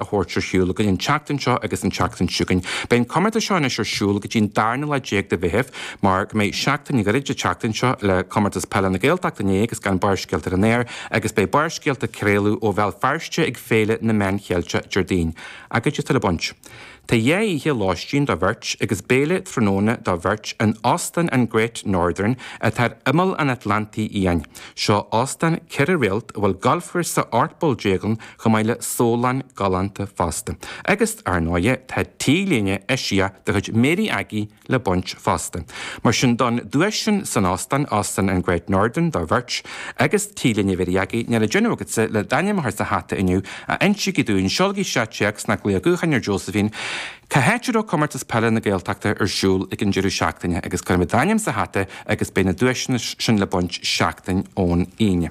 a thabhairt ar shiúl againn an tseachtain seo agus an tseachtain seo chugainn. Beidh an comórtas seo anois ar siúl go dtí an darna lá déag de Mheitheamh mar go mbeidh seachtain ghairid an tseachtain seo le Comórtas Peile na Gaeltacht inné agus gan Barrscéalta ar an aer agus beidh Barrscéalta ag craoladh ó Bhéal Feirste ag Féile na Meán Cheilteach Déardaoin. Agus cad é atá le baint? Tá dhá oíche lóistín do bheirt agus béile tráthnóna do bheirt in Óstán an Great Northern atá ar imeall an Atlantaigh Fhiáin. Seo óstán ceithre réalt a bhfuil galfchúrsa ocht bpoll déag ann chomh maith le sólann galánta fosta. Agus, ar ndóighe, tá T-léine eisiach de chuid Mary Aggie le baint fosta. Mar sin, don duais sin san Óstán, Óstán an Great Northern, do bheirt, agus T-léine Mhary Aggie, níl le déanamh agatsa, le d'ainm a chur sa hata inniu, ach insígí dúinn, seolaigí seo téacs ná glaoch gutháin ar Josephine, cá háit a raibh Comórtas Peile na Gaeltachta ar siúl ag an deireadh seachtaine, agus cuirfimid d'ainm sa hata agus beidh na duaiseanna sin le baint seachtain ón Aoine.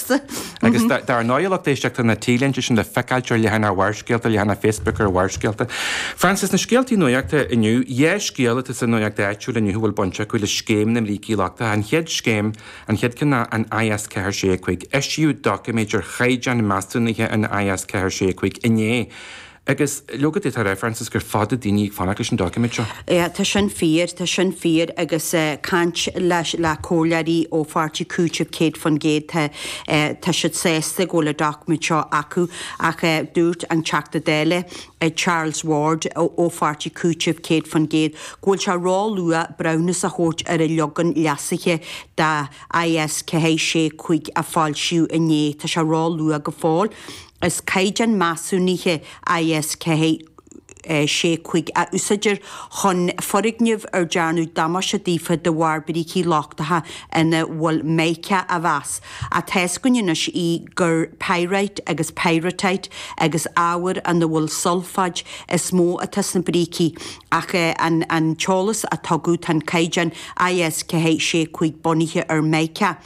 Agus dar ndóigh, a lucht éisteachta, tá na T-léinte sin le feiceáilt ar leathanach Bharrscéalta, leathanach Facebook ar Bharrscéalta. Frances, sna scéaltaí nuachta inniu, dhá scéal atá sa nuacht áitiúil inniu a bhfuil baint acu le scéim na mbrící lochtacha. An chéad scéim, an chéad cheann acu an IS-465. Eisíodh doiciméad ar chaighdeán measúnaithe an IS-465 inné. Agus leoga d'fhéadfá a rá, Frances, gur fada daoine ag fanacht leis an doiciméad seo. Yeah, tá sin fíor, tá sin fíor agus eh caint leis, le comhairleoirí ó pháirtí Cúitimh céad faoin gcéad, tá eh, tá siad sásta go bhfuil an doiciméad seo acu ach eh dúirt an Teachta Dála eh Charles Ward ó ó pháirtí Cúitimh céad faoin gcéad go bhfuil sé róluath breithiúnas a thabhairt ar an leagan leasaithe de IS465 a foilsíodh inné, tá sé róluath go fóill. Is caighdeán measúnaithe IS 465 a úsáidtear chun foirgnimh ar dearnadh damáiste daofa de bharr brící lochtacha ina bhfuil Mica a mheas, ach tá a fhios againn anois eh gur Pyrite agus Pyrrhotite agus ábhair ina bhfuil sulfáit is mó atá sna brící, ach an t-eolas a tugadh, tá an caighdeán IS 465 bunaithe ar Mica.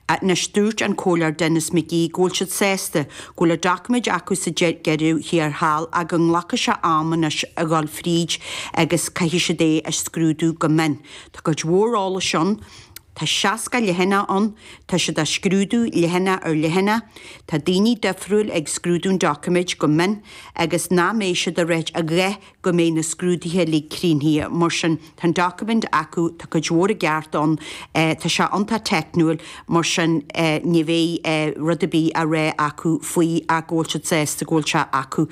Anois dúirt an Comhairleoir Denis McGee go bhfuil siad sásta go bhfuil an doiciméad acu sa deireadh thiar thall ach go nglacfaidh sé am anois a dhul fríd agus caithfidh siad é a scrúdú go mion. Tá cuid mhór eolais ann, tá 60 leathanach ann, tá siad á scrúdú leathanach ar leathanach, tá daoine difriúil ag scrúdú an doiciméid go mion agus nach mbeidh siad ag ráit a dhath go mbeidh na scrúduithe uilig críochnaithe. Mar sin, tá an document acu, tá cuid mhór i gceart ann, tá sé iontach teicniúil, mar sin ní bheidh rud ar bith á rá acu faoi ach go bhfuil siad sásta go bhfuil sé acu.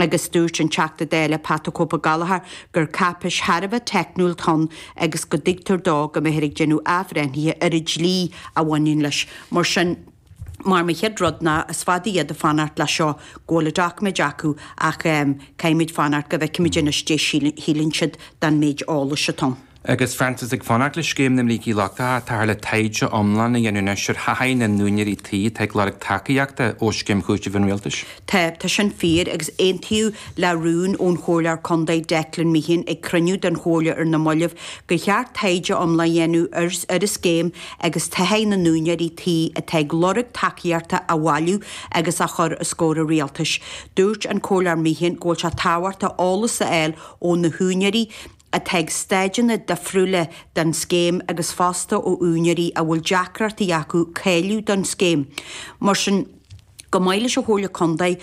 Agus dúirt an Teachta Dála Pat 'The Cope' Gallagher gur cáipeis thar a bheith teicniúil atá ann agus go dtuigtear dó go mbeifear ag déanamh athbhreithnithe ar an dlí a bhaineann leis. Mar sin. Mar mo chéad rud ná is fada iad ag fanacht le seo go bhfuil na doiciméid acu ach ehm, caithfimid fanacht go bhfeicfimid anois caidé a shíleann siad den méid eolais atá ann. Agus Frances ag fanacht le scéim na mBrící Lochtacha, táthar le taighde iomlán a dhéanamh anois ar thaithí na n-úinéirí tí atá ag lorg tacaíochta ó Scéim Chúitimh an Rialtais. Tá, tá sin fíor agus aontaíodh le rún ón Chomhairleoir Contae Declan Meehan ag cruinniú den Chomhairle ar na moillibh gur cheart taighde iomlán a dhéanamh ar, ar an scéim agus taithí na n-úinéirí tí atá ag lorg tacaíochta a bhailiú agus a chur os comhair an rialtais. Dúirt an Comhairleoir Meehan go bhfuil sé tábhachtach eolas a fháil ó na húinéirí atá ag stáideanna difriúla den scéim agus fosta ó úinéirí a bhfuil deacrachtaí acu cáiliú don scéim. Mar sin. Chomh maith leis an Chomhairle Contae,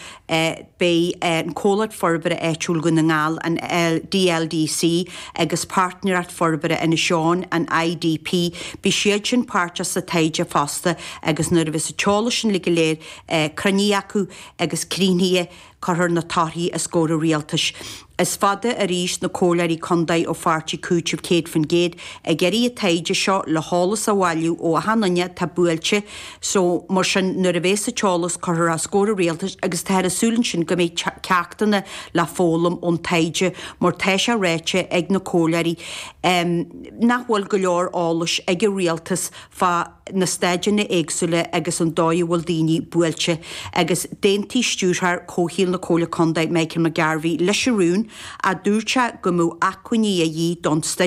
beidh an Comhlacht Forbartha Áitiúil Dhún na nGall, an DLDC, agus Páirtnéireacht Forbartha Inis Eoghain, an IDP, beidh siad sin páirteach sa taighde fosta agus nuair a bheas an t-eolas sin uilig go léir cruinnithe acu agus críochnaithe, Cuirfear na torthaí os comhair an rialtais. Is fada arís na comhairleoirí contae ó pháirtí Cúiteamh 100% ag iarraidh an taighde seo le heolas a bhailiú ó achan duine atá buailte so mar sin nuair a bhéas an t-eolas curtha os comhair an rialtais agus táthar ag súil ansin go mbeidh ceachtanna le foghlaim ón taighde mar tá sé ráite ag na comhairleoirí nach bhfuil go leor eolais ag an rialtas fá na stáideanna éagsúla agus an dóigh a bhfuil daoine buailte, agus d'aontaigh Stiúrthóir Comhshaoil na Comhairle Contae, Michael McGarvey, leis an rún, ach dúirt sé go mbeadh acmhainní a dhíth don staid.